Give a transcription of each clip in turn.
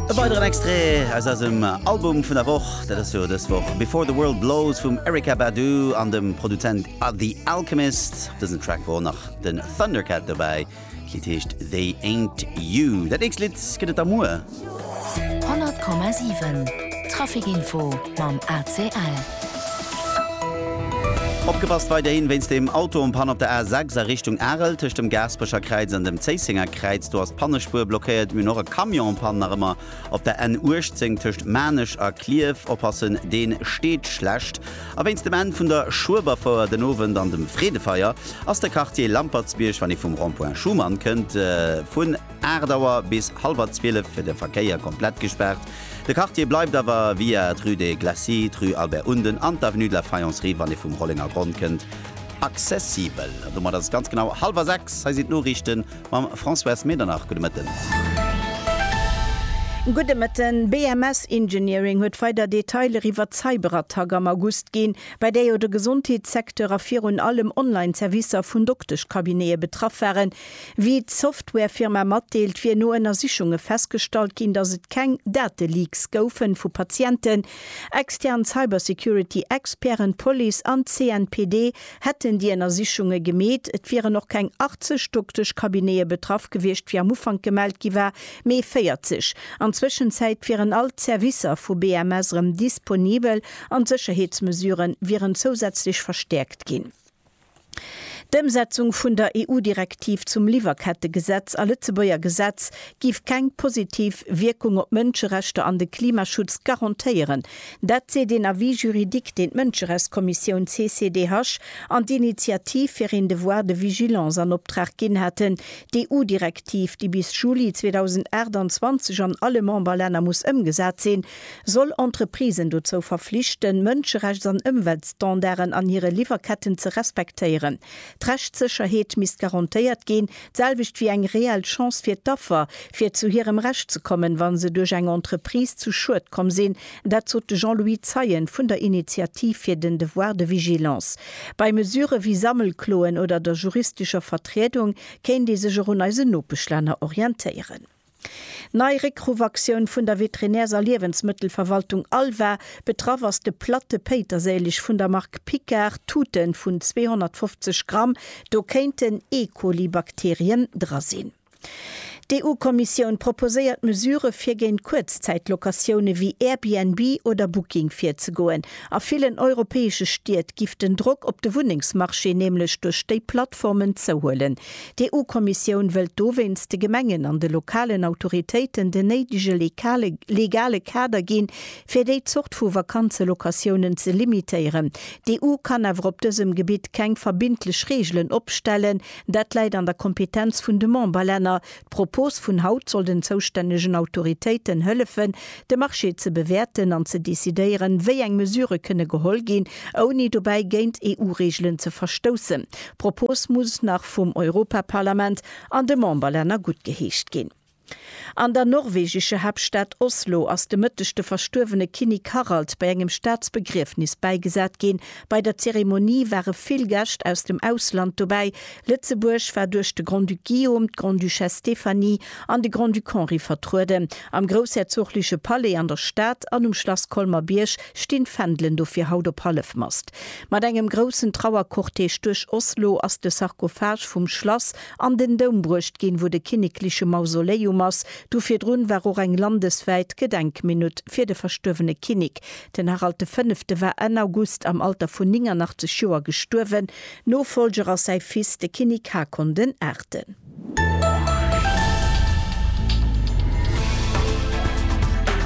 E weideren Extrait aus eisem Album vun der Woch, dat ass jo dës Woch Before the World Blows vum Erykah Badu an dem Produzent The Alchemist. Op dësem Track wor och nach den Thundercat dobäi. D'Lidd heescht They Ain't You. Dat nächst Lidd gëtt et da muer. 100,7 Traffic Info mam ACL. Opgepasst, weiderhin wéinst dem Auto-Unpann op der A6 a Richtung Arel, tëscht dem Gaasperecher Kräiz an dem Zéissenger Kräiz, do ass d'Pannespuer blockéiert. Mir hunn och e Camion-Unpann nach ëmmer op der N 18 tëscht Maarnech a Clierf. Oppassen, deen steet schlecht. A wéinst dem Enn vun der Schueberfouer den Owend an dem Freedefeier ass de Quartier Lampertsbierg, wann ee vum Rond-Point Schuman kënnt, vun 8 Auer bis hallwer 12 fir de Verkéier komplett gespaart. De Quartier bleift awer, via d'Rue des Glacis, d'Rue Albert Unden an d'Avenue de la Faïencerie, wann ee vum Rollengergronn kënnt, accessibel. An domat ass et ganz genau hallwer sechs. Hei sinn d'Noriichte mam Françoise Medernach. Gudde Mëtten. Gudde Mëtten. BMS Engineering huet weider Detailer iwwert d'Cyberattack am August ginn, bei där jo de Gesondheetssecteur a virun allem Online-Servicer vun Dokteschcabinete betraff waren, Wéi d'Softwarefirma matdeelt, wier no Ënnersichunge festgestallt ginn, datt et keng Dateleaks goufe vu Patienten. Extern Cybersecurity-Experten, d'Police an d'CNPD hätten déi Ënnersichunge gemeet. Et wieren och keng 80 Dokteschcabinete betraff gewiescht, wéi am Ufank gemellt gi war, mee 40. An Zwëschenzäit wieren all d'Servicer vu BMS erëm disponibel an d'Sécherheetsmesurë wieren zousätzlech verstäerkt ginn. D'Ëmsetzung vun der EU-Direktiv zum Liwwerkettegesetz a Lëtzebuerger Gesetz giff keng positiv Wierkung op d'Mënscherechter an de Klimaschutz garantéieren. Dat seet een Avis juridique, deen d'Mënscherechtskommissioun CCDH an d'Initiativ fir een Devoir de vigilance an Optrag ginn haten. D'EU-Direktiv, déi bis Juli 2028 an alle Memberlänner muss ëmgesat sinn, soll Entreprisen dozou verflichten, Mënscherechts an Ëmweltstandarden an hire Liwwerketten ze respektéieren. D'Rechtssécherheet misst garantéiert ginn, d'selwecht wéi eng reell Chance fir d'Affer, fir zu hirem Recht ze kommen, wa se duerch eng Entreprise zu Schued komm sinn. Dat sot de Jean-Louis Zeien vun der Initiativ fir den Devoir de vigilance. Bei Mesurë wéi Sammelkloen oder der juristescher Vertriedung kéint ee sech och un eisen Nopeschlänner orientéieren. Nei Réckruffactioun vun der Veterinärs a Liewensmëttelverwaltung ALVA, betraff ass de Platte Péiterséileg vun der Mark Picard, Tuten vun 250 Gramm, do kéinten E-Coli-Bakterien dra sinn. D'EU-Kommissioun proposéiert Mesurë fir géint Kuerzzäit-Locatioune wéi Airbnb oder Booking virzegoen. A villen europäesche Stied giff den Drock op de Wunnengsmarché nämlech duerch déi Plattformen zouhuelen. D'EU-Kommissioun wëllt dowéinst de Gemengen an de lokalen Autoritéiten den néidege legale Kader ginn, fir déi Zort vu Vakanzelocatiounen ze limitéieren. D'EU kann awer op dësem Gebitt keng verbindlech Reegelen opstellen. Dat läit an der Kompetenz vun de Memberlänner. D'Propos vun haut soll den zoustännegen Autoritéiten hëllefen, de Marché ze bewäerten an ze decidéieren, wéi eng Mesure kënne geholl ginn, ouni dobäi géint EU-Reegelen ze verstoussen. D'Propos muss nach vum Europaparlament an de Memberlänner guttgeheescht ginn. An der norwegescher Haaptstad Oslo ass de Mëtteg de verstuerwene Kinnik Harald bei engem Staatsbegriefnis bäigesat ginn. Bei der Zeremonie ware vill Gäscht aus dem Ausland dobäi, Lëtzebuerg war duerch de Grand-Duc Guillaume, d'Grande-Duchesse Stéphanie an de Grand-Duc Henri vertrueden. Am groussherzogleche Palais an der Stad an um Schlass Colmer-Bierg stinn d'Fändelen dofir haut op Hallefmast. Mat engem groussen Trauercortège duerch Oslo ass de Sarkophage vum Schlass an den Doum bruecht ginn, wou de kinnekleche Mausoléium ass. Du virdrun war och eng landeswäit Gedenkminutt fir de verstuerwene Kinnek. Den Harald de Fënnefte war Enn August am Alter vun 89 Joer gestuerwen. Nofollger ass säi Fils, de Kinnik Haakon den Aachten.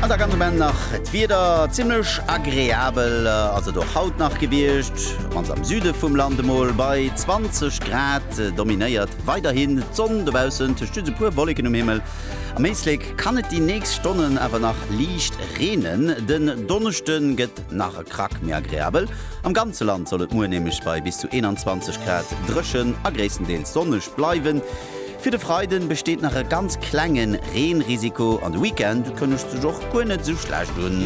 An da ganz um Enn nach d'Wieder, zimmlech agreabel ass et och haut nach gewiescht, mannst am Süde vum Land. Emol bei 20 Grad dominéiert weiderhin d'Sonn dobaussen, tëscht just e puer Wolleken um Himmel. Am Éislek kann et déi nächst Stonnen awer nach liicht reenen. Den Donneschde gëtt. Nach e Krack méi agreabel. Am ganze Land soll et muer nämlech bei bis zu 21 Grad dréchen a gréisstendeels sonneg bleiwen. Fir de Freide besteet nach e ganz klenge Reenrisiko an de Weekend kënnegt sech och guer net esou schlecht un.